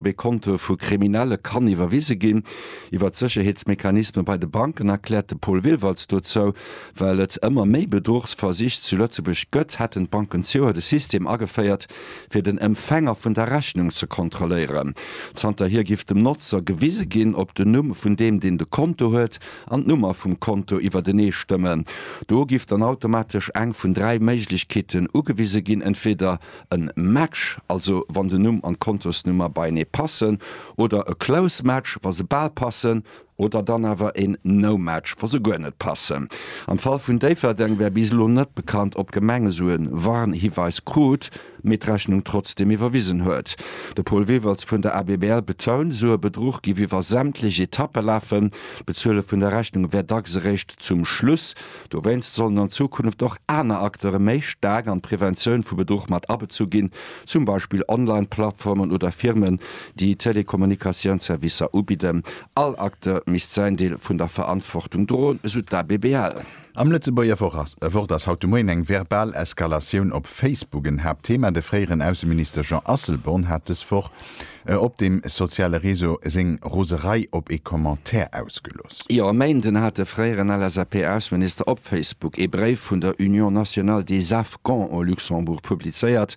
Wéi Kontoe vu Kriminelle kann iwwerwise ginn. Iwwer d'Sécherheetsmechanisme bei de Banken erkläert de Paul Willwaltz dozou, Well et ëmmer méi Bedruchsversich zu Lëtzebuerg gëtt, hätten d'Banken zioer de System ageféiert, fir den Empfänger vun der Rechnung ze kontrolléieren. Zanterhier giff dem Notzer gewise ginn, ob den Numm vun deem, deen de Konto huet, an d'Nummer vum Konto iwwertenee stëmmen. Do giff dann automatesch eng vun dräi Méiglechkeeten ugewise ginn, entweeder En Match, also wann den Numm an d'Kontosnummer beienee passen, oder e close match, wa se bal passen, oder dann awer en no match, wa se guer net passen. Am Fall vun Déifferdeng wär bis elo net bekannt, ob d'Gemeng esou e Warnhiweis krut, mee d'Rechnung trotzdeem iwwerwisen huet. De Paul Wewels vun der ABBL betount, esou e Bedruch géif iwwer sämtlech Etappe lafen. D'Bezuele vun der Rechnung wär dacks eréischt zum Schluss Dowéinst sollen an Zukunft och aner Acteure méi staark an d'Preventioun vu Bedruch mat abezu ginn, zum Beispill Online-Plattformen oder Firmen, déi Telekommunikatiounsservicer ubidden. All Acteur misst säin Deel vun der Verantwortung droen, esou d'ABBL. Am Lëtzebuerger Wort ass haut de Moien eng verbal Eskalatioun op Facebook en Haaptthema. De fréieren Ausseminister Jean Asselborn hat dës Woch e op dem soziale Réseau seng Roserei op ee Commentaire ausgelooss. Jo, e Méinden hat de fréieren LSAP-Ausseminister op Facebook ee Bréif vun der Union nationale des Afghans au Luxembourg publizéiert.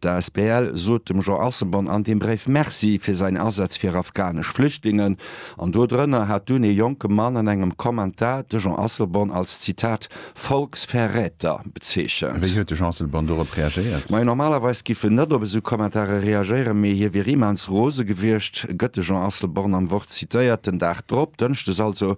D'asbl sot dem Jean Asselborn an deem Bréif Merci fir säin Asaz fir afghanesch Flüchtlingen. An do drënner hat dunn ee jonke Mann an engem Kommentar de Jean Asselborn als, Zitat, Volksverräter bezeechent. Wéi huet de Jean Asselborn dorop reagéiert? Majo, normalerweis giff en net op esou Kommentare reagéieren, mee hie wier immens rose gewiescht, gëtt de Jean Asselborn am Wort zitéiert. Den Dag drop, Dënschdes also,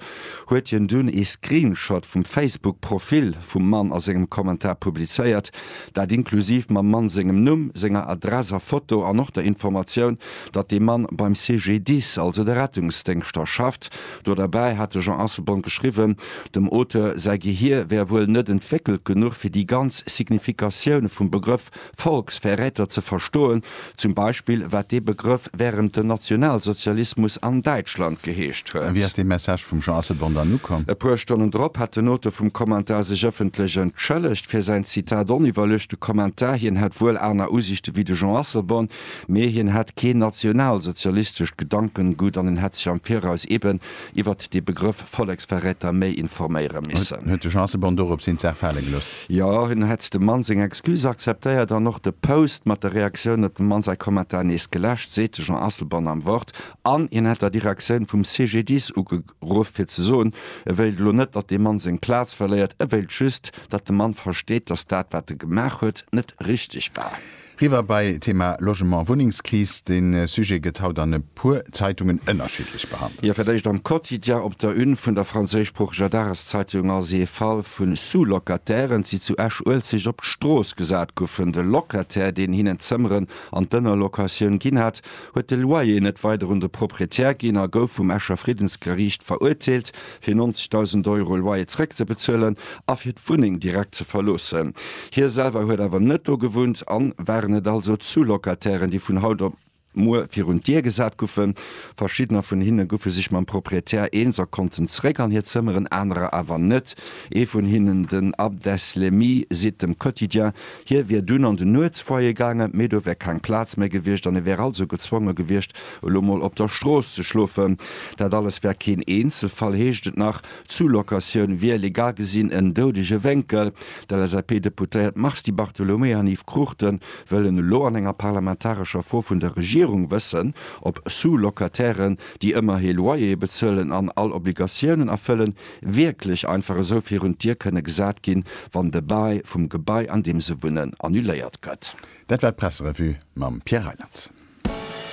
huet hien dunn ee Screenshot vum Facebook-Profil vum Mann a sengem Kommentar publizéiert. Dat inklusiv mam Mann sengem Numm, senger Adress a Foto an och der Informatioun, datt dee Mann beim CGDIS, also de Rettungsdéngschter, schafft. Do derbäi hat de Jean Asselborn geschriwwen, dem Auteur säi Gehier wär wuel net entwéckelt genuch, fir déi ganz Signifikatioune vum Begrëff Volksverräter ze verstoen, zum Beispill wat dee Begrëff wärend dem Nationalsozialismus an Däitschland geheescht A wéi huet. ass dee Message vum Jean Asselborn dann ukomm? E puer Stonnen drop hat den Auteur vum Kommentar sech ëffentlech entschëllegt fir säin Zitat oniwwerluechte Kommentar. Hien hätt wuel aner Usiichte wéi de Jean Asselborn, Mee hien hat keen nationalsozialistescht Gedankengut an en hätt sech am Viraus eben iwwert dee Begrëff Volleksverräter méi informéiere missen. Huet de Chancebon dorop seng Zaach fale gelooss? Jo, hien hätt dem Mann seng Excuse akzeptéiert an och de Post mat der Reaktioun op dem Mann säi Kommentar nees geläscht, seet de Jean Asselborn am Wort. An hien hätt der Direktioun vum CGDIS ugeruff fir ze soen, e wéilt elo net, datt dee Mann seng Plaz verléiert, e wéilt just, datt de Mann versteet, datt dat, wat e gemaach huet, net richteg war. Riwwer bei Thema Logement, Wunnengskris. De Sujet gëtt haut an e puer Zeitungen ënnerschiddlech behandelt. Jo, fir d'éischt am Quotidien. Op der Une vun der franséischsproocheger Dageszeitung ass ee Fall vu Sous-Locatairen, déi zu Esch-Uelzecht op d'Strooss gesat goufen. De Locataire, deen hinnen d'Zëmmeren an d'Ënnerlocatioun ginn hat, huet de Loyer net weider un de Proprietär ginn a gouf vum Escher Friddensgeriicht verurteelt, fir 90.000 Euro Loyer zeréckzebezuelen a fir d'Wunneng direkt ze verloossen. Hie selwer huet awer net do gewunnt an waren et also d'Zou-Locatairen, déi vun haut op muer virun d'Dier gesat guffen. Verschiddener vun hinne guffe sech mam Proprietär eens a konnten zeréck an hir Zëmmeren, anerer awer net. Ee vun hinnen, den Abdeslemy, seet dem Quotidien, hie wier dunn an den Nuetsfoyer gaangen, mee do wär keng Plaz méi gewiescht an e wär also gezwonge gewiescht, Elo mol op der Strooss ze schlofen, dat alles wär keen Eenzelfall, heescht et nach. D'Zoo-Locatioun wier legal gesinn en doudege Wénkel. D'LSAP-Deputéiert Mars Di Bartolomeo an Yves Cruchten wëllen elo an enger parlamentarescher Fro vun der Regierung wëssen, ob Sous-Locatairen, déi ëmmer ee Loyer bezuelen an all Obligatiounen erfëllen, wierklech einfach esou virun d'Dier kënne gesat ginn, wann de Bail vum Gebai, an deem se wunnen, annuléiert gëtt. Dat war d'Presserevue mam Pierre Reyland.